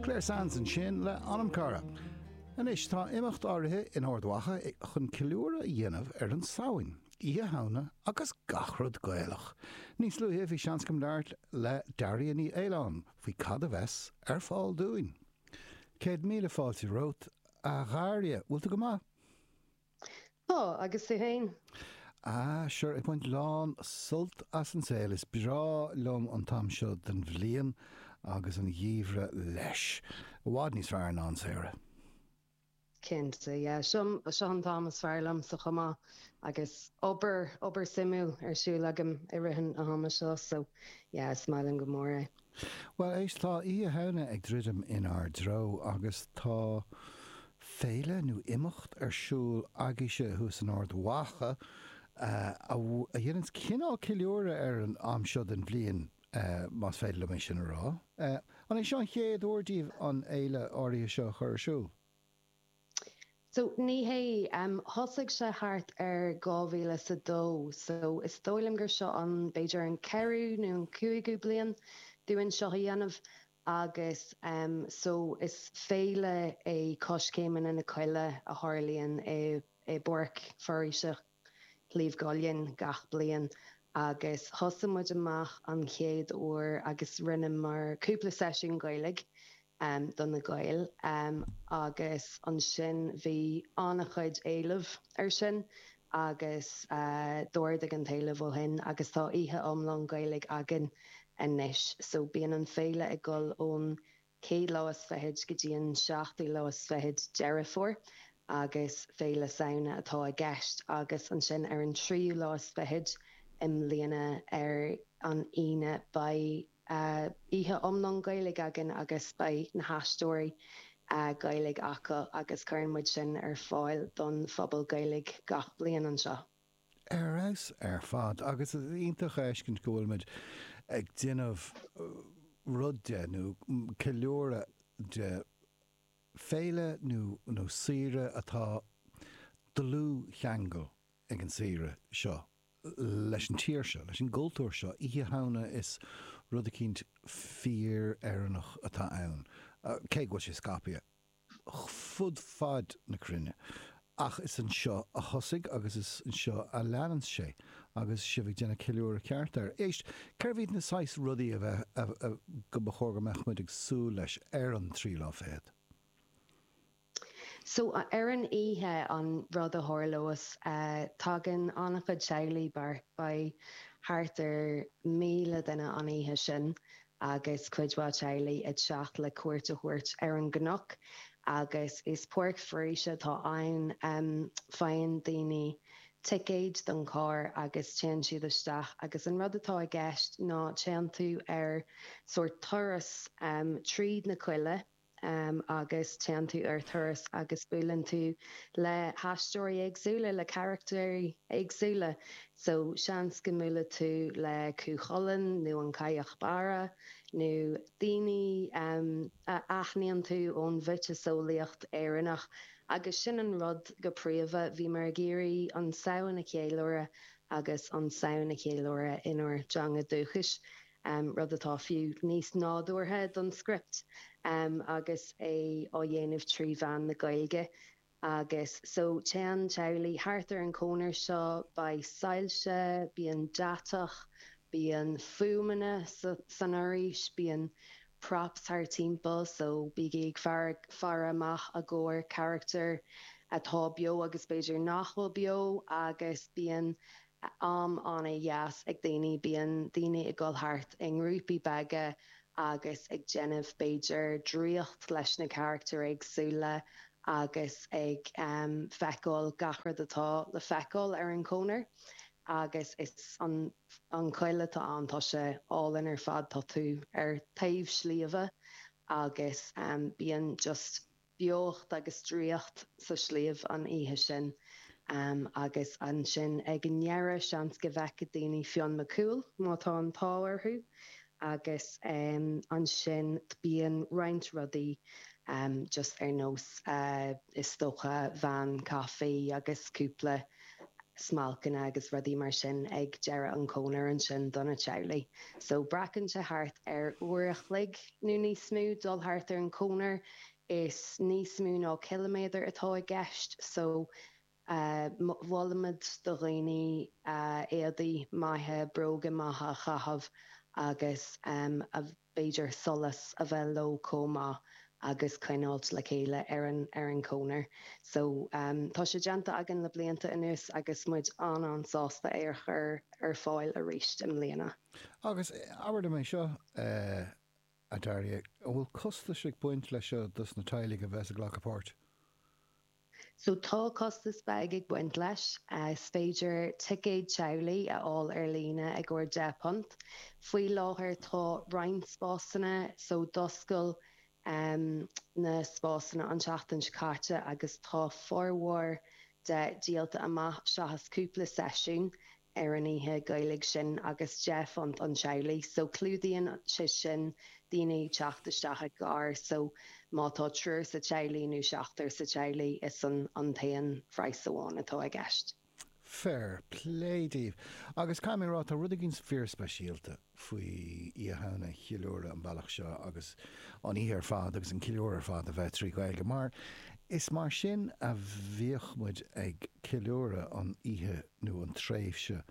Clare Sands ansin le Anamchara. Anois tá imeacht áirithe in Ard Mhacha chun ceiliúradh a dhéanamh ar an Samhain, Oíche Shamhna agus gach rud Gaelach. Níos luaithe bhí seans agam labhairt le Daria Ní Fhaoláin faoi cad a bheas ar fáil dúinn. Céad míle fáilte romhat, a Dharia. Bhfuil tú go maith? Tá, agus tú féin? Ah, sure, ag baint lán sult as an saol. Is breá liom an t-am seo den bhliain agus an gheimhreadh leis. I bhfad níos fearr ná an samhradh. Cinnte, yeah. Seo, seo an t-am is fearr liomsa chomh maith agus obair, obair suimiúil ar siúl agam i rith an ama seo, so yeah, is maith liom go mór é. Bhuel, éist, tá Oíche Shamhna ag druidim inár dtreo agus tá féile nó imeacht ar siúl agaibhse thuas in Ard Mhacha a dhéananns cineál ceiliúradh ar an am seo den bhliain, más féidir liom é sin a rá. An é seo an chéad uair daoibh an fhéile áirithe seo a chur ar siúl? So, ní hé. Thosaigh sé thart ar dhá mhíle 's a dó, so is dóigh liom gur seo an, b'fhéidir an ceathrú nó an cúigiú bliain dúinn seo a dhéanamh agus ehm, so is féile é Coiscéimeanna na Coille a tharlaíonn i, i bPáirc Foraoise, Shliabh gCuillinn gach bliain agus thosaigh muid amach an chéad uair agus rinneamar cúpla seisiún Gaeilge do na Gaeil agus ansin bhí an-chuid éileamh ar sin agus d'ardaigh an t-éileamh ó shin agus tá oíche iomlán Gaeilge againn anois so bíonn an féile ag dul ón chéad lá is fichid go dtí an seachtú lá is fichid Deireadh Fómhair agus Féile Samhna atá i gceist agus ansin ar an tríú lá is fichid i mbliana ar an Aoine beidh oíche iomlán Gaeilge againn agus beidh na haisteoirí Gaeilge acu agus cuireann muid sin ar fáil don phobal Gaeilge gach bliain anseo. Ar fheabhas ar fad agus is iontach a fheiscint go bhfuil muid ag déanamh rud de, nó ceiliúradh de, féile nó saoire atá dlúthcheangal ag an saoire seo leis an tír seo, leis an gcultúr seo. Oíche Shamhna is rud eicínt fíor-Éireannach atá ann, cé go bhfuil sé scaipthe. fud fad na cruinne. Ach is anseo a thosaigh agus is anseo a leanann sé. Agus sibh ag déanamh ceiliúradh ceart air. Éist, cérbh iad na saghas rudaí a bheith, a, a, go mba chóir go mbeadh muid ag súil leis ar an tríú lá fichead? So, ar an oíche, an rud a tharlós, eh, tagann an-chuid teaghlaigh, beidh thart ar 1,000 duine an oíche sin, agus cuid mhaith teaghlaigh ag teacht le cuairt a thabhairt ar an gcnoc agus is páirc foraoise atá ann. Faigheann daoine ticéid don charr agus téann siad isteach agus an rud atá i gceist ná téann tú ar sórt turas tríd na coilleadh, agus téann tú ar thuras agus buaileann tú le haisteoirí éagsúla, le carachtair éagsúla so seans go mbuailfidh tú le Cú Chulainn nó an Cailleach Bhéarra nó daoine a aithníonn tú ón mhiotaseolaíocht Éireannach agus sin an rud go príomha. Bhíomar ag iarraidh an Samhain a cheiliúradh agus an Samhain a cheiliúradh inár dteanga dhúchais. Am, rud atá fiú níos nádúrtha don script agus é á dhéanamh trí mheán na Gaeilge. Agus so, téann teaghlaigh thart ar an chonair seo, beidh soilse, bíonn deatach, bíonn fuaimeanna san fhoraois, bíonn props thar timpeall, so bígí ag faire amach a gcomhair carachtar atá beo agus b'fhéidir nach bhfuil beo, agus bíonn am an-dheas ag daoine, bíonn daoine ag dul thart i ngrúpaí beaga agus ag déanamh, b'fhéidir, draíocht leis na carachtair éagsúla agus ag feiceáil gach rud atá le feiceáil ar an chonair agus is an choill atá ann, tá sé álainn ar fad, tá tú ar taobh sliabha agus bíonn just Beocht agus draíocht sa tsliabh an oíche sin. Agus ansin ag an ndeireadh, seans go bhfeicfidh daoine Fionn Mac Cumhaill, má tá an t-ádh orthu. Agus ansin bíonn roinnt rudaí just ar nós, is dócha, veain caife agus cúpla smailceanna agus rudaí mar sin ag deireadh an chonair ansin do na teaghlaigh. So glacann sé thart ar uair a chloig nó níos mó dul thart ar an chonair. Is níos mó ná ciliméadar atá i gceist. So mholfaimis do dhaoine éadaí maithe, bróga maithe a chaitheamh agus a. b'fhéidir solas a bheith leo chomh maith agus coinneáil le chéile ar an chonair. So tá sé déanta againn le blianta anuas agus muid an-an-sásta é a chur ar fáil aríst i mbliana. Agus abair liom é seo, a Daria, an bhfuil costas ag baint leis seo dos na teaghlaigh a bheas ag glacadh páirt? So tá costas beag ag baint leis. Is féidir ticéad teaghlaigh a fháil ar líne ar 10 bpunt. Faoi láthair tá roinnt spásanna, so d'oscail na spásanna an tseachtain seo caite agus tá formhór de díolta amach seachas cúpla seisiún. ar an oíche Gaeilge sin agus deich phunt an teaghlach so clúdaíonn sé sin daoine ag teacht isteach i gcarr so má tá triúr sa teaghlach nó seachtar sa teaghlach is an an t-aon phraghas amháin atá i gceist. Fair play daoibh. Agus caithfidh mé a rá, tá rud éigin fíorspeisialta. faoi Oíche Shamhna a cheiliúradh an bealach seo agus an oíche ar fad agus an ceiliúradh ar fad a bheith trí Ghaeilge mar is mar sin a bhíodh muid ag ceiliúradh an oíche nó an tréimhse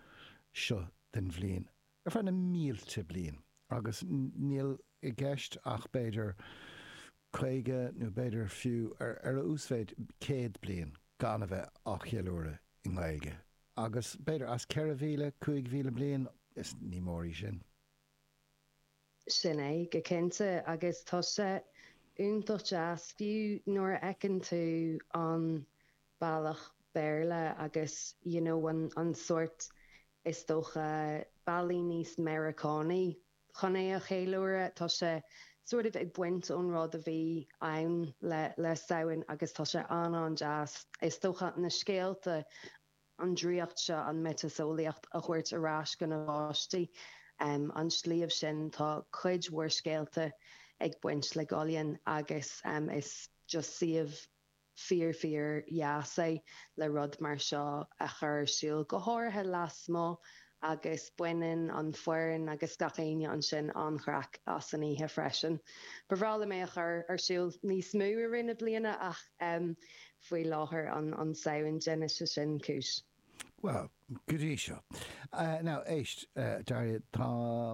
seo den bhliain ar feadh na mílte bliain agus níl i gceist ach b'fhéidir caoga nó b'fhéidir fiú ar a uasmhéid céad bliain gan a bheith á cheiliúradh i nGaeilge. Agus b'fhéidir as 4,000, 5,000 bliain, is ní mór í sin. Sin é, go cinnte. Agus tá sé iontach deas, fiú nuair a fheiceann tú an bealach Béarla agus you know an sórt, is dócha, bealaí níos Meiriceánaigh Chun é a cheiliúradh, tá sé sort of ag baint ón rud a bhí ann le Samhain agus tá sé an-an-deas. Is dócha na scéalta, an draíocht seo, an mhiotaseolaíocht a thabhairt ar ais do na páistí. An sliabh sin, tá cuid mhór scéalta ag baint le Gullion agus is just suíomh Fíor fíor dheas é le rud mar seo a chur ar siúl, go háirithe lasmuigh agus baineann an foireann agus gach éinne ansin an-chraic as an oíche freisin. Ba bhreá liom é a chur ar siúl níos mó i rith na bliana ach faoi láthair an Samhain, déanfaidh sé sin cúis. Bhuel, go dtí seo. Now, éist, a Daria, tá,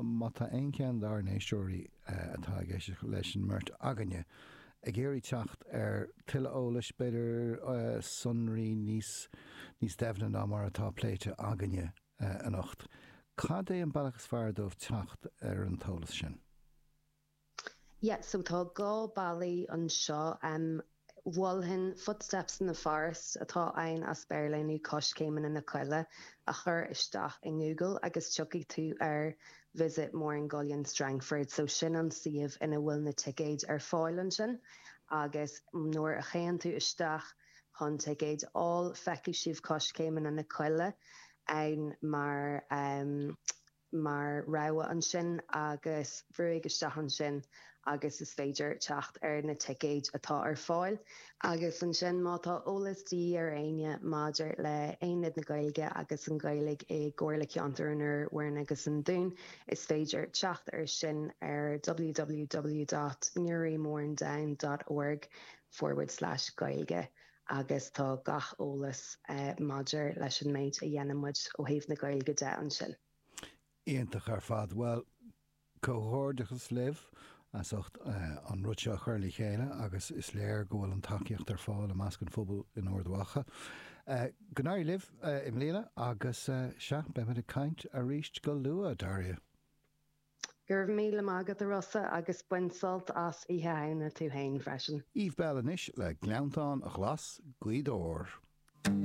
má tá aon cheann dár n-éisteoirí atá ag éisteacht leis an mbeirt againne ag iarraidh teacht ar tuilleadh eolais, b'fhéidir, sonraí níos, níos doimhne ná mar atá pléite againne anocht, cad é an bealach is fearr dóibh teacht ar an t-eolas sin? Yeah, so tá dhá bealaí anseo, em, mholfainn Footsteps in the Forest atá ann as Béarla, nó Coiscéimeanna na Coille a chur isteach i nGoogle agus tiocfaidh tú ar Visit Mourne Gullion Strangford, so sin an suíomh ina bhfuil na ticéid ar fáil ansin agus nuair a théann tú isteach chun ticéid a fháil feicfidh sibh Coiscéimeanna na Coille ann mar, em, mar rogha ansin agus brúigh isteach ansin agus is féidir teacht ar na ticéid atá ar fáil. Agus ansin má tá eolas de dhíth ar éinne maidir le Aonad na Gaeilge agus an Ghaeilge i gComhairle Ceantair an Iúir, Mhúrn agus an Dúin is féidir teacht air sin ar www.newrymournedown.org forward slash gaeilge. agus tá gach eolas maidir leis an méid a dhéanann muid ó thaobh na Gaeilge de ansin. Iontach ar fad. Bhuel, comhghairdeachas libh as ucht an rud seo a chur le chéile agus is léir go bhfuil an tacaíocht ar fáil i measc an phobail in Ard Mhacha. Go n-éirí libh i mbliana agus, sea, beimid ag caint arís go luath, a Daria! Go raibh míle maith agat, a Rossa, agus bain sult as Oíche Shamhna tú féin freisin. Eve Belle anois le Gleanntáin Ghlas' Ghaoth Dobhair.